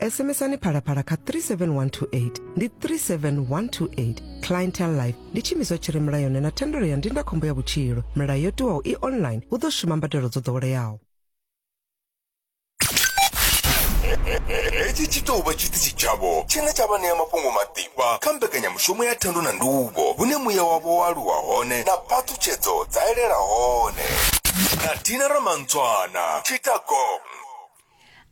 sms-ani phalaphala kha 37128 ndi 37128 clientele life ndi tshiimiswa tshi re mulayoni na thendelo ya ndindakhombo ya vhutshilo milayo yo tiwaho i online hu ḓo shuma mbadelo dzo ḓoweleaho hetshi tshi tou vha tshiṱitshi tshavho tshine tsha vha ṋea mafhungo maḓifha kha mbekanyamushumo ya thendo na nduvho hune muya wavho wa aluwa hone na phaṱhutshedzo dza elela hone na dina ramantswana tshitagong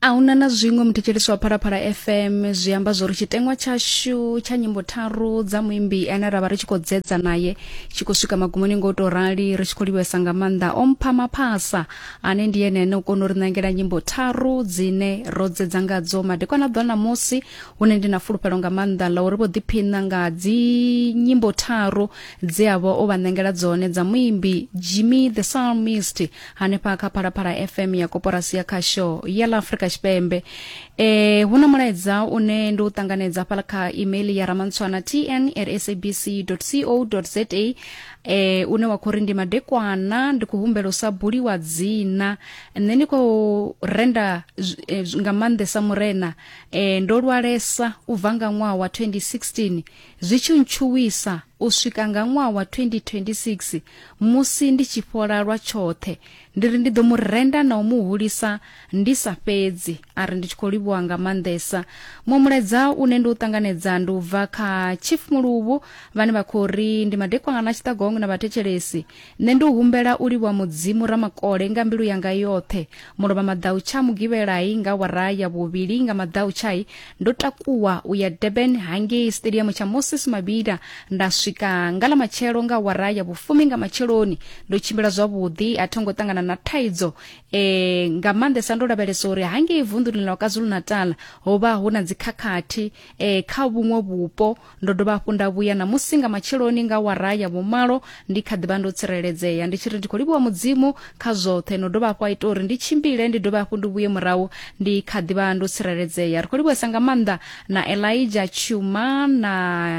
a huna na zwiṅwe muthetshelesi wa phalaphala fm zwi amba zwo ri tshiteṅwa tshashu tsha nyimbo tharu dza muimbi ane ra vha ri tshi khou dzedza naye tshi khou swika magumoni nga u tou rali ri tshi khou livhesa nga maanḓa o mpha maphasa ane ndi ene ane u kona u ri ṋangela nyimbo tharu dzine ro dzedza ngadzo madekwana ḓwa ṋamusi hune ndi na fulufhelo nga maanḓa ḽa uri vho ḓiphiṋa nga dzi nyimbo tharu dze a vha o vha ṋangela dzone dza muimbi jimmy the psalmist hanefha kha phalaphala fm ya koporasi ya khasho ya ḽa afrika tshipembe e hu na mulaedza une ndi u ṱanganedza fhala kha email ya ramantshwana tn at sabc co za e une wa khou ri ndi madekwana ndi khou humbela u sa buliwa dzina nṋe ndi khou renda e, nga maanḓesa murena e, ndo lwalesa u bva nga ṅwaha wa 2016 zwi tshi ntshuwisa u swika nga ṅwaha wa 2026 musi ndi tshi fhola lwa tshoṱhe ndi ri ndi ḓo mu renda na u mu hulisa ndi sa fhedzi a ri ndi tshi khou livhuwa nga maanḓesa muṅwe mulaedza une ndi u ṱanganedza ndi u bva kha chief muluvhu vhane vha khou ri ndi madekwangana a tshiṱagongwe na vhathetshelesi Nṋe ndi humbela u livhuwa Mudzimu Ramakole nga mbilu yanga yoṱhe. Mulovha maḓau tsha Mugivhelai nga wara ya vhuvhili nga maḓau tshai ndo takuwa u ya Durban hangei stadium tsha Moses Mabhida nda swika nga ḽa matshelo nga wara ya vhufumi nga matsheloni ndo tshimbila zwavhuḓi a thongo ṱangana na thaidzo e, nga maanḓesa ndo lavhelesa uri hangei vunḓuni ḽa KwaZulu-Natal ho vha hu na dzikhakhathi e, kha vhuṅwe vhupo ndo dovha hafhu nda vhuya ṋamusi nga matsheloni nga wara ya vhumalo ndi kha ḓivha ndo tsireledzea ndi tshi ri ndi khou livhuwa mudzimu kha zwoṱhe no dovha hafhu a ita uri ndi tshimbile ndi dovha hafhu ndi vhuye murahu ndi kha ḓivha ndo tsireledzea ri khou livhuwesa nga maanḓa na elija tshuma na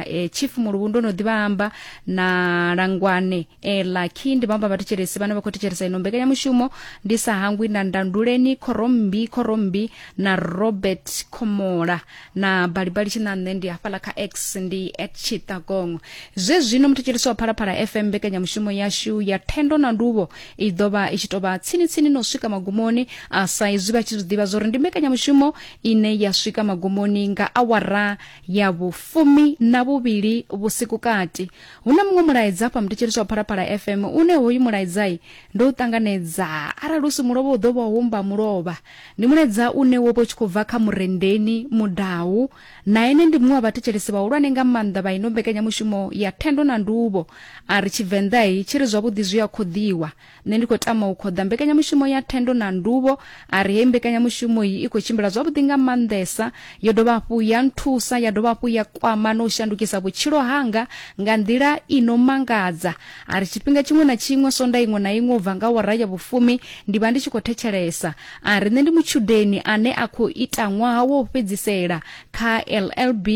eh, chief muluvhu ndo no ḓivha amba na langwane e lucky ndi bamba vhathetshelesi vhane vha khou thetshelesa ino mbekanyamushumo ndi sa hangwi na ndanduleni khorombi khorombi na robert khomola na balibali tshinanṋe ndi hafhaḽa kha x ndi at chitagongo zwe zwino muthetshelesi wa phalaphala fm mbekanyamushumo yashu ya thendo na nduvho i ḓo vha i tshi tou vha tsinitsini no swika magumoni a sa izwi vha tshi zwi ḓivha zwo ri ndi mbekanyamushumo ine ya swika magumoni nga awara ya vhufumi na vhuvhili vhusiku kati Hu na muṅwe mulaedza afha muthetsheli zwa Phalaphala FM une hoyu mulaedzai ndo u ṱanganedza arali u si mulovha u ḓo vha humba mulovha. Ndi mulaedza une wo vha u tshi khou bva kha Murendeni Mudau na ene ndi muṅwe wa vhathetshelesi vhahulwane nga maanḓa vha ino mbekanyamushumo ya Thendo na Nduvho. A ri Tshivenḓai tshi ri zwavhuḓi zwi a khoḓiwa. nṋe ndi khou tama u khoḓa mbekanyamushumo ya thendo na nduvho a ri hei mbekanyamushumo iyi i khou tshimbila zwavhuḓi nga maanḓesa yo dovha hafhu ya nthusa ya dovha hafhu ya kwama na u shandukisa vhutshilo hanga nga nḓila i no mangadza a ri tshifhinga tshiṅwe na tshiṅwe sonda iṅwe na iṅwe u bva nga wara ya vhufumi ndi vha ndi tshi khou thetshelesa a ri nṋe ndi mutshudeni ane a khou ita ṅwaha wo fhedzisela kha llb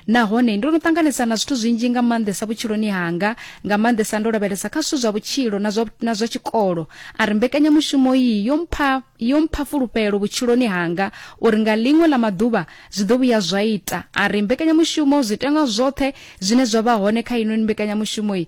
Nahone ndo no ṱanganesa na zwithu zwinzhi nga maanḓesa vhutshiloni hanga, nga maanḓesa ndo lavhelesa kha zwithu zwa vhutshilo na zwa, na zwa tshikolo. A ri mbekanyamushumo iyi yo mpha, yo mpha fulufhelo vhutshiloni hanga uri nga ḽiṅwe ḽa maḓuvha zwi ḓo vhuya zwa ita. A ri mbekanyamushumo, zwiteṅwa zwoṱhe zwine zwa vha hone kha heinoni mbekanyamushumo iyi,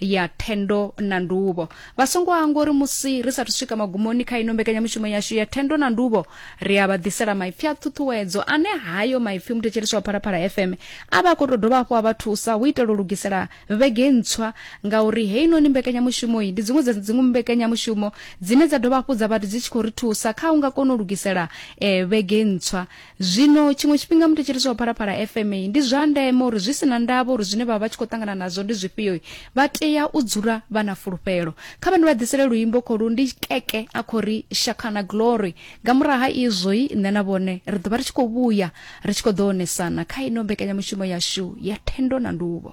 ya thendo na nduvho vha songo hangwa uri musi ri sathu swika magumoni kha ino mbekanyamushumo yashu ya thendo na nduvho ri a vha ḓisela maipfi a ṱhuṱhuwedzo ane hayo maipfi muthetshelesi wa phalaphala fm a vha a khou tou dovha hafhu a vha thusa hu itela u lugisela vhege ntswa ngauri heinoni mbekanyamushumo iyi ndi dziṅwe dza dziṅwe mbekanyamushumo dzine dza dovha hafhu dza vha dzi tshi khou ri thusa kha u nga kona u lugisela eh, vhege ntswa Zwino tshiṅwe tshifhinga muthetshelesi wa Phalaphala FM ndi zwa ndeme uri zwi si na ndavha uri zwine vha vha tshi khou ṱangana nazwo ndi zwifhio vha tea u dzula vha na fulufhelo. Kha vha ndi vha ḓisele luimbo kholu ndi keke a khou ri Shakana Glory. Nga murahu ha izwo i nṋe na vhone ri ḓo vha ri tshi khou vhuya ri tshi khou ḓo onesana kha ino mbekanyamushumo yashu ya thendo na nduvho.